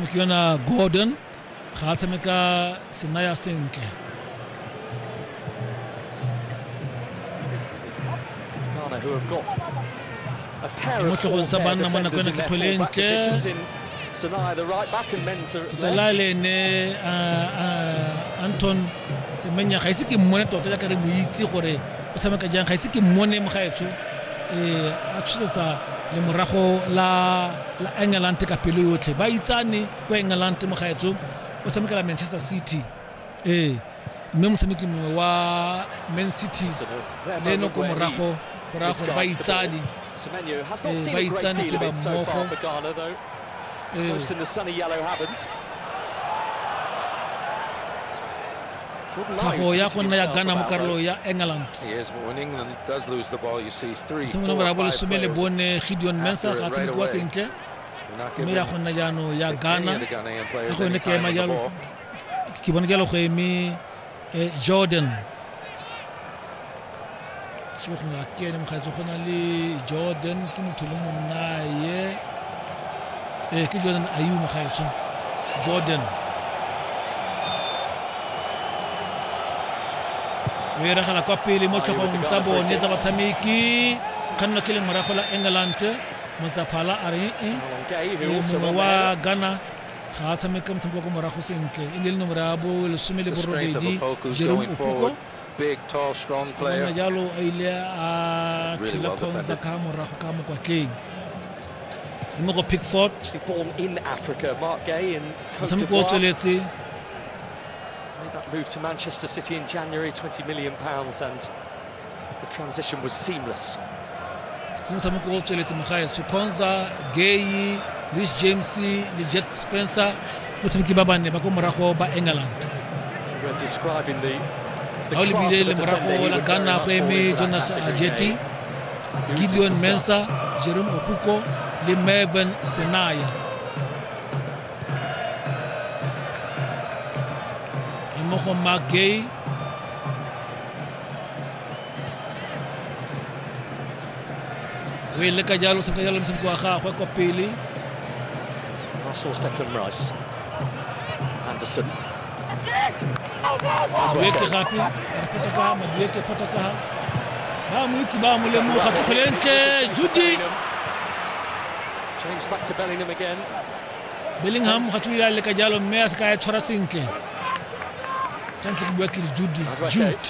ke yona gordon ga a tshameka senaya sentle Ghana who have got a pair of Mutlego sa banna mo nakong ya kgwele e ntle. positions in Sanaya, the right back, and Mensa at tota la left. le ne a, a, anton semenya ga ise ke mmone tota jaaka re mo itse gore o tshameka jang ga ise ke mmone mo gaetsho um a tshosetsa le morago la la Engelante ka pelo yotlhe. Ba itsane kwa Engelante, mogaetso o tshamekela Manchester City. Ee, mme motshameki mongwe wa Man City le eno ko morago go raya gore ba itsane ee, ba itsane ke ba mmogo ee. tlhago ya go nna ya gana mo karolo ya england tshimong nomoro ya bolesome le bone gideon mensa ga tshamekiwa sentle mme ya go nna jaanong ya gana ka go yone ke ema jalo ke bone jalo go eme eh, jordan ke go na ke ene mokgaitso go na le jordan ke motho le monnaye ee eh, ke jordan ayu mokgaitso jordan o eragela kwa pele mo tlhogong tsa bone tsa batshameki kganno ke le morago la england motsaphala a re ee mongwe wa ghana ga a tshameka motshameko wa ko morago sentle e ne le nomoro ya bo lesome le borobedi jerome opoko gona jalo a ile a thela ponza ka morago ka mokwatleng mme go pickford motshameko o tsweletse made that move to Manchester City in January, 20 million pounds, and the transition was seamless. ke motshameko o tsweletse mogaetsho conza gay rich james le jet spencer batshameki ba banne ba ko morago ba england ga o lebile le morago la ghana go eme jonas ajeti gideon mensa jerome okuko le mervin senaya mmogo mark gay o e leka jalo senka jalo mosebetsi wa gagwe kwa pele anderson madueke gape re potakaga madueke potakaga ba mo itse ba mo lemoga tlogole ntle judy bellingham ga tlo ya leka jalo mme a se ka ya tshwara sentle tshwanetse ke bua ke re judy jude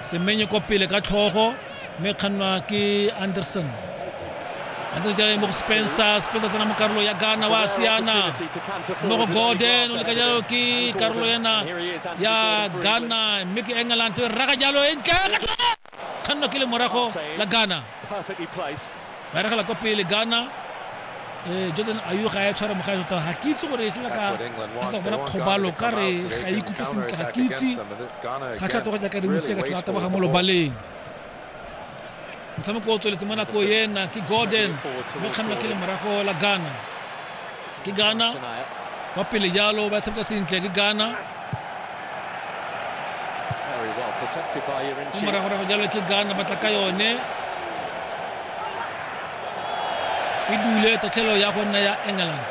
semenye kwa pele ka tlhogo mme kgannwa ke anderson anderson jale mo go spencer spencer tsena mo karolo ya ghana wa siana mo go gordon o leka jalo ke karolo yana ya ghana mme ke england raga jalo e ntle kgannwa ke le morago la ghana ba regela kwa pele ghana um jordan ayu ga ya tshwara mogae tota ga ke itse gore e sela ka sa bona kgobalo ka re ga e ikutlwe sentle ga ke itse ga tlhato go jaaka dimotse ka tlhata ba ga mo lobaleng motshameko o tsweletse mo nako ena ke gordon mo kganna ke le morago la ghana ke gana kwa pele jalo ba tshameka sentle ke gana mo moragorago jalo ke gana batla ka yone e dule tatlhelo ya go nna ya england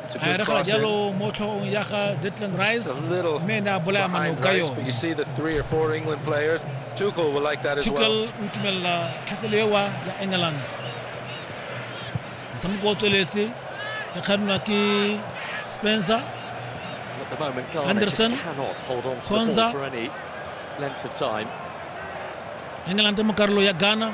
a re ga jalo mo tlhogong ya ga Declan Rice mme ne a bolaya manao ka yone Tuchel will like that as well. Tuchel utumela tlhaselewa ya England. Motshameko o tsweletse ya kganwa ke Spencer Anderson Konza England mo karolo ya Ghana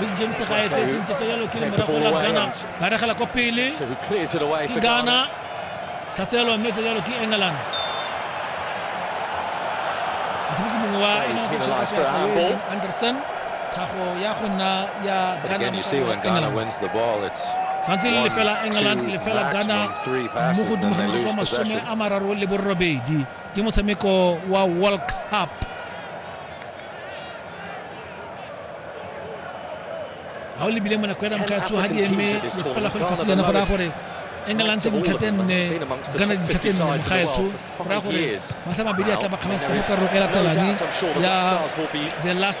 Big James ga e tse sentle tsa yalo ke le morago la Ghana ba regela kwa pele ke Ghana tlhaselwa mme tsa yalo ke England mosebetsi mongwe wa United States Anderson tlhago ya go nna ya Ghana santse le lefela england lefela ghana mo godimo ga metsotso masome a mararo le borobedi ke motshameko wa world cup ga o lebile monako ya damkatso ga di eme fela go lefatshe jana go raya gore england dintlha tse nne gana dintlha tse nne mogaetsho go raya gore masa mabedi a tla bakgamatsa mo karolo e latelang ya the last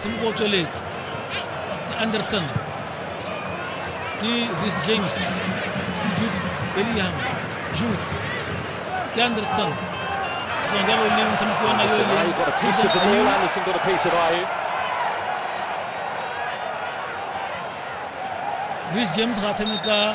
se mo botsweletse ke anderson ke ris james ke jude bellingham jude ke anderson jalo le motshameki wa nayo ris james ga tshameka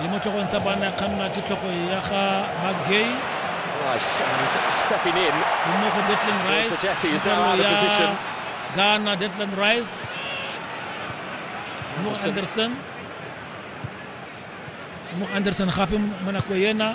le mo tlogong tsa bana kgannwa ke tlhogo ya ga magay Rice and stepping in. Mmogo for Declan Rice. Sejeti is now out of position. Ghana, Declan Rice. Mo Anderson. Mo Anderson gape mo nako ena.